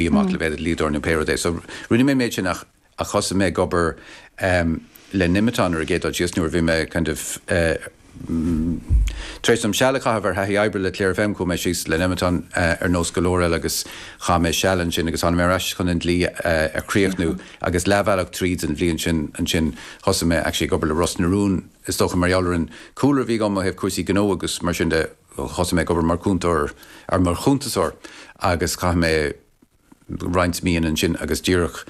bhí amach le bheith i mo dhlíodóir nó pé rud é. So rinne mé an méid sin ach thosaigh mé ag obair le Nemeton ar an gcéad dul síos nuair a bhí mé kind of tar éis dom seal a chaitheamh ar thaithí oibre le Clare FM, chuaigh mé síos le Nemeton ar nós go leor eile agus chaith mé seal ansin agus tháinig mé ar ais chun an dlí a chríochnú agus leathbhealach tríd an mbliain sin ansin thosaigh mé actually ag obair le Ros na Rún is dócha mar gheall ar an cúlra a bhí agam ó thaobh cúrsaí gnó agus mar sin de. Thosaigh mé ag obair mar chúntóir, er mar chuntasóir agus chaith mé roinnt míonna ansin agus díreach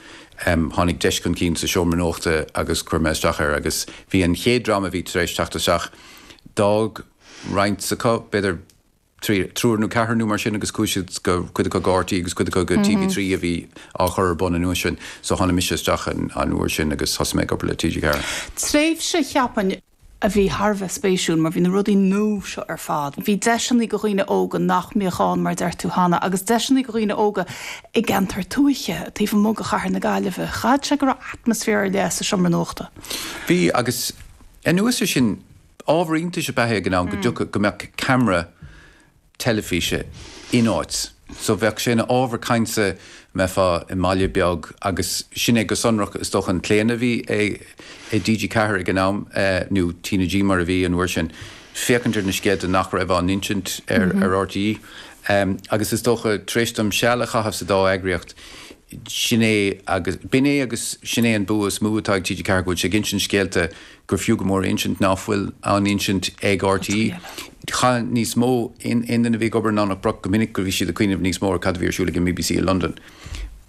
em tháinig deis chun cinn sa seomra nuachta agus chuir mé isteach air agus bhí an chéad dream a bhí tar éis teacht isteach, d'fhág roinnt acu, b'fhéidir trí, triúr nó ceathrar nó mar sin agus chuaigh siad go, cuid acu go RTÉ agus cuid acu go TV3 a bhí á chur ar bun an uair sin so tháinig mise isteach an uair sin agus thosaigh mé ag obair le TG4. Tréimhse, cheapfainn, a bhí thar a bheith spéisiúil mar bhí na rudaí nua seo ar fad, bhí deiseanna go dhaoine óga nach mbeadh ann mar a deir tú cheana agus deiseanna go dhaoine óga i gceantair tuaithe taobh amuigh de chathair na Gaillimhe. Chaithfeadh sé go raibh atmaisféar ar leith sa seomra nuachta. Bhí agus anuas ar sin, ábhar iontais ab ea é ag an am go dtiocfadh, go mbeadh camera teilifíse in áit. So bheadh sé ina ábhar cainte dá mbeifeá i mbaile beag agus sin é go sonrach is dócha an claonadh a bhí i TG4 ag an am nó T na G mar a bhí an uair sin féachaint ar na scéalta nach raibh á n-insint ar RTÉ agus is dócha tar éis dom seal a chaitheamh sa dá eagraíocht sin é agus b'in é agus sin é an bua is mó atá ag TG4 go bhfuil sé ag insint scéalta gur fiú go mór a insint ná fuil á n-insint ag RTÉ. Cheap níos mó aon duine a bhí ag obair i nDomhnach Broc go minic go raibh siad ag cuimhneamh níos mó ar chad a bhí ar siúl ag an BBC i Londain.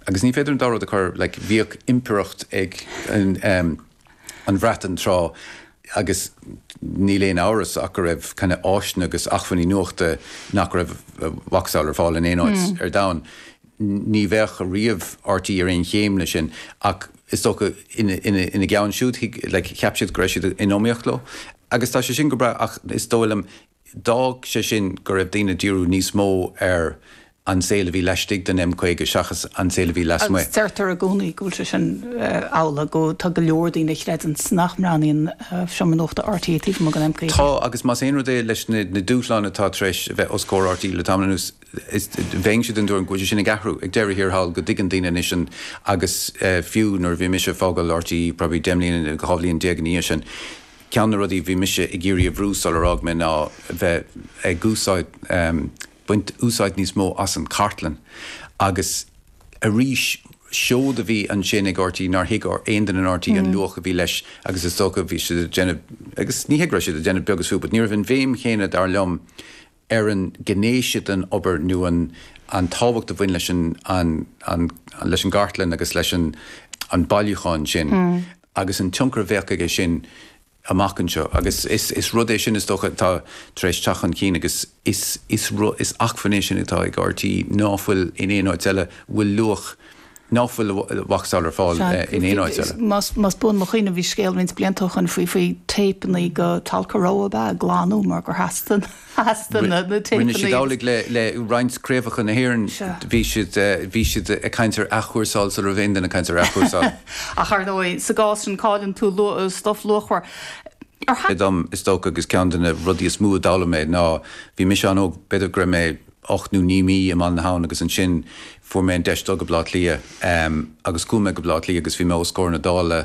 Agus ní féidir an dá rud a chur, like bhíodh impireacht ag an Bhreatain tráth agus níl aon amhras ach go raibh kind of áiseanna agus achmhainní nuachta nach raibh a macasamhail ar fáil in aon áit ar domhan. Ní bheadh ariamh RTÉ ar aon chéim leis sin ach is dócha ina gceann siúd cheap siad go raibh siad in iomaíocht leo agus tá sé sin go breá ach is dóigh liom d'fhág sé sin go raibh daoine ag díriú níos mó ar an saol a bhí laistigh den M50 seachas an saol a bhí lasmuigh. Deirtear i gcónaí go bhfuil sé sin amhlaidh, go, tá go leor daoine a chreideann nach mbreathnaíonn seomra nuachta RTÉ taobh amuigh den M50. Tá agus más aon rud é leis na dúshláin atá tar éis a bheith os comhair RTÉ le tamall anuas, bheinnse den tuairim go bhfuil sé sin ag athrú ag deireadh thiar thall, go dtuigeann daoine anois an, agus fiú nuair a bhí mise ag fágáil RTÉ probably deich mbliana, dhá bhliain déag ina dhiaidh sin, ceann de na rudaí a bhí mise ag iarraidh a bhrú sular fhág mé ná bheith ag úsáid, baint úsáid níos mó as an gcartlann agus arís seod a bhí ansin ag RTÉ nár thuig aon duine in RTÉ an luach a bhí leis agus is dócha bhí siad ag déanamh, agus ní hea go raibh siad ag déanamh beag is fiú but ní raibh an bhéim chéanna dar liom ar an ngné sin den obair nó an tábhacht a bhain leis an gcartlann agus leis an bhailiúchán sin agus an tionchar a bheadh aige sin amach anseo. Agus is rud é sin, is dócha, atá tar éis teacht chun cinn agus is acmhainn é sin atá ag RTÉ ná fuil in aon áit eile. Bhfuil luach. ná fuil vacsáil ar fáil in aon áit eile. Más buan mo chuimhne bhí scéal roinnt blianta ó shoin faoi téipeannaí go Tolka Row a bheith glanta mar gur theastaigh na téipeannaí. Rinne siad amhlaidh le roinnt craobhacha na hÉireann, bhí siad ag caint ar athchúrsáil sula raibh aon duine ag caint ar athchúrsáil. Ach ar ndóigh sa gcás sin cailleann tú stuif luachmhar. Ar thaithí. dom is dócha agus ceann de na rudaí is mó a d'fhoghlaim mé ná bhí mise an-óg b'fhéidir go raibh mé. ocht nó naoi mí i mBaile na hAbhann agus ansin fuair mé an deis dul go Baile Átha Cliath agus chuaigh mé go Baile Átha Cliath agus bhí mé os comhair na Dála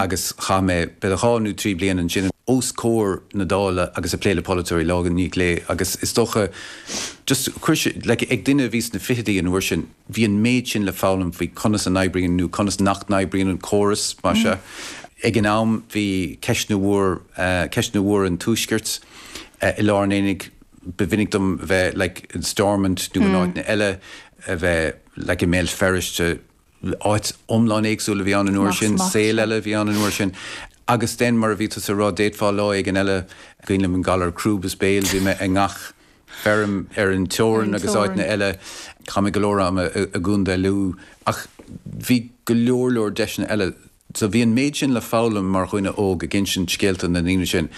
agus chaith mé b'fhéidir dhá nó trí bliana ansin os comhair na Dála agus ag plé le polaiteoirí lá i ndiaidh lae agus is dócha just chuir sé like ag duine a bhí sna fichidí an uair sin bhí an méid sin le foghlaim faoi conas a n-oibríonn nó conas nach n-oibríonn an córas más ea. Ag an am bhí ceist na bhfuair ceist na bhfuair an Tuaiscirt i lár an aonaigh ba mhinic dom bheith like in Stormont nó in áiteanna eile, a bheith like i mBéal Feirste, áit iomlán éagsúil a bhí ann an uair sin, saol eile a bhí ann an uair sin agus then mar a bhí tusa a rá, d'fhéadfá lá éigin eile, cuimhin liom an galar crúb is béil, bhí mé i ngach feirm ar an teorainn agus áiteanna eile, chaith mé go leor ama i gContae Lú ach bhí go leor leor deiseanna eile. So bhí an méid sin le foghlaim mar dhuine óg ag insint scéalta na ndaoine sin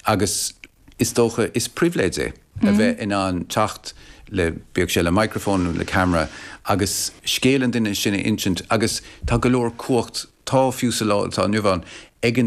agus is dócha is pribhléid é a bheith in ann teacht le, bíodh sé le microfón nó le camera agus scéal an duine sin a insint agus tá go leor cumhacht, tá fiú sa lá atá inniu ann, ag an.